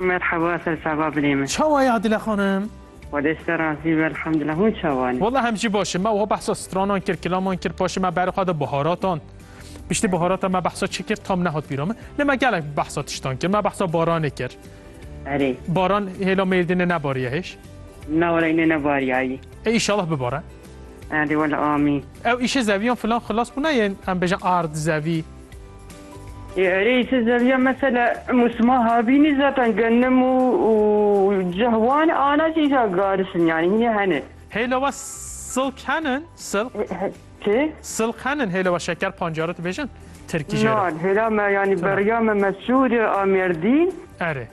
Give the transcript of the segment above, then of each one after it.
Merhaba sersava binê min. Çawa ye Adile xanim? Xwedê site razî be elhamdulillah hûn çawa ne? Wela em jî baş in. Me wiha behsa stranan kir, kilaman kir, paşê me berê xwe da biharatan. Piştî biharatan me behsa çi kir tam nehat bîra min. Lê me gelek behsa tiştan kir. Me behsa baranê kir. Erê. Baran hêla mêrdînê nebariye hêj? Na wele înê nebariyayî. Ê îşallah bibare. Hadi wala amin. Ew îşê zeviyan filan xilas bûna yên em bêjin ard zevî. Ê erê îşê zeviyan mesela musma habînî zaten genim û û cih wan ana jî îşa garis in yanî hînê hene. Hêla we silk henin? Silk? Çi? Silk henin hêla we şeker pancare dibêjin tirkî jê re. Nan hêla me yanî beriya me Mesûd a Mêrdîn. Erê.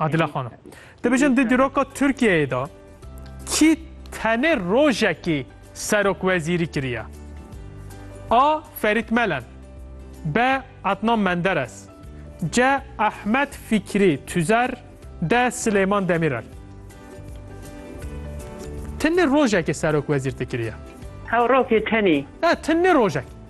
Adile Xanım. Dibijin di dîroka Türkiye'ye da kî tenê rojekî serok wezîrî kiriye. A. Ferit Melen B. Adnan Menderes C. Ahmet Fikri Tüzer D. Süleyman Demirel Tenê rojekê serok wezîr te kiriye. Hew rokê tenê. E, tenê rojek.